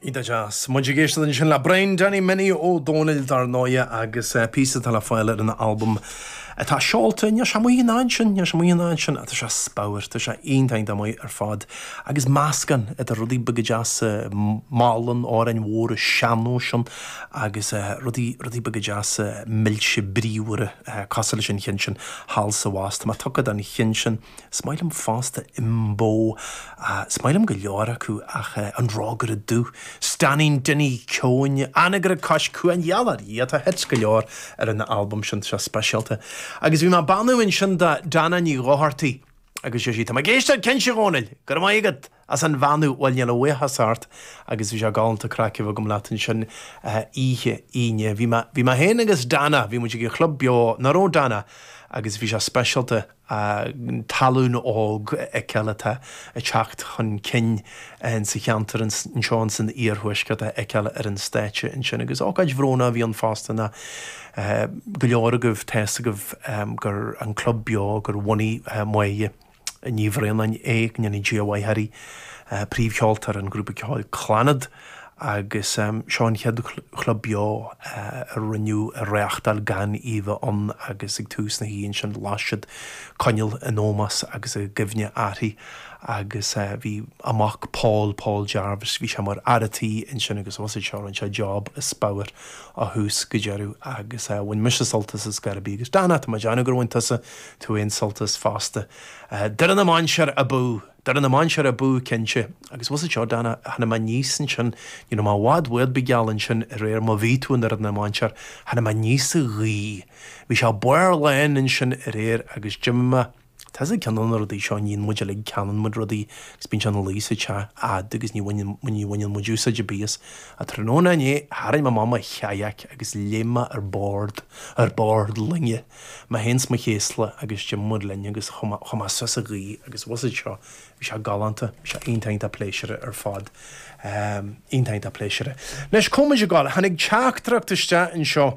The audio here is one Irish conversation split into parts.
Iontach deas. Muid ag éisteacht ansin le Brian Danny Minnie Ó Domhnaill dar ndóighe agus píosa atá le fáil ar an albam atá seolta inniu. Is iomaí ghnáth ansin, is iomaí ghnáth ansin ach tá sé as pabhar, tá sé iontach maith ar fad. Agus meascán idir rudaí beaga deasa malla, amhráin mhóra sean-nóis ann agus rudaí, rudaí beaga deasa, milse bríomhara, cosúil leis an chinn sin thall sa bhás. Tá mé tugtha don chinn sin. Is maith liom fosta Imbo. Is maith liom go leor acu ach an Rógaire Dubh, Stainnín Dinny Ceoin, Anagaire Cois Cuain, Yallah Yee atá hits go leor ar an albam sin seo speisialta. Agus bhí mé ag beannú ansin do Dana Ní Dhochartaigh agus deir sí, Tá mé ag éisteacht cinnte, a Dhónaill! Go raibh maith agat! As an Bheannú, Bhuel níl a bhuíochas ort agus bhí sé galánta craic a bheith agam leat ansin oíche Aoine. Bhí mé, bhí mé féin agus Dana, bhí muid ag an chlub beo nach raibh Dana agus bhí sé speisialta an tallann óg a fheiceáil atá ag teacht chun cinn sa cheantar anseo ins an iarthuaisceart a fheiceáil ar an stáitse ansin agus ócáid bhrónach a bhí ann fosta nó go leor agaibh, tá's agaibh gur an club beo gur bhunaigh Moya. Ní Bhraonáin, é, go ndéana Dia a mhaith uirthi, príomhcheoltóir an ghrúpa ceoil Clannad, agus seo an chéad chlub beo a rinneadh a reáchtáil gan í a bheith ann agus ag tús na hoíche ansin las siad coinneal in ómós agus i gcuimhne uirthi agus bhí a mac Paul, Paul Jarvis, bhí sé mar fhear an tí ansin agus thosaigh sé rinne sé job as pabhar ó thús go deireadh agus bhain mise sult as ar scor ar bith agus Dana, tá mé ag déanamh gur bhain tusa tú féin sult as fosta. Doire na Mainséar abú! Doire na Mainséar abú, cinnte. Agus bhfuil 'fhios a'd seo, Dana, tháinig mé aníos ansin, ní raibh mé i bhfad uait bith geal ansin aréir, má bhí tú i nDoire na Mainséar, tháinig mé aníos sa ghaoth. Bhí sé barr lán ansin aréir agus d'imigh mé, tá's a'd ceann de na rudaí seo a níonn muid uilig, ceannann muid rudaí agus bíonn sé ina luí sa teach a'd agus ní bhaineann, ní bhaineann muid úsáid ar bith as. Ach tráthnóna inné, tharraing mé amach mo chajac agus léim mé ar bord, ar bord loinge. Mé féin is mo chéasla agus d'imigh muid linn agus chuaigh mé suas an Ghaoth agus bhfuil 'fhios a'd seo, bhí sé galánta, bhí sé iontach, iontach pléisiúrtha ar fad, iontach, iontach pléisiúrtha. Anois, cá bhfuil muid ag gabháil, tháinig teachtaireacht isteach anseo,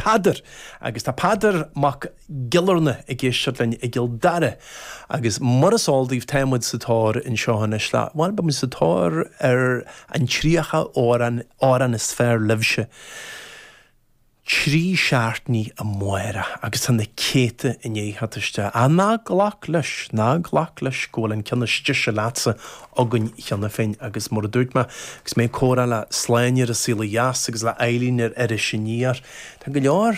Peadar, agus tá Peadar Mac Giollarnáth ag éisteacht linn i gCill Dara, agus mar is eol daoibh, tá muid sa tóir anseo anois le, bhuel, beidh muid sa tóir ar an 30 amhrán, amhrán is fearr libhse. Trí seachtainí amárach agus tá na céadta i ndiaidh a theacht isteach, ná glac leis, ná glac leis go bhfuil an ceann is deise leatsa againn cheana féin agus mar a dúirt mé agus mé ag comhrá le Sláine ar An Saol Ó Dheas agus le Eibhlín ar Iris Aniar, tá go leor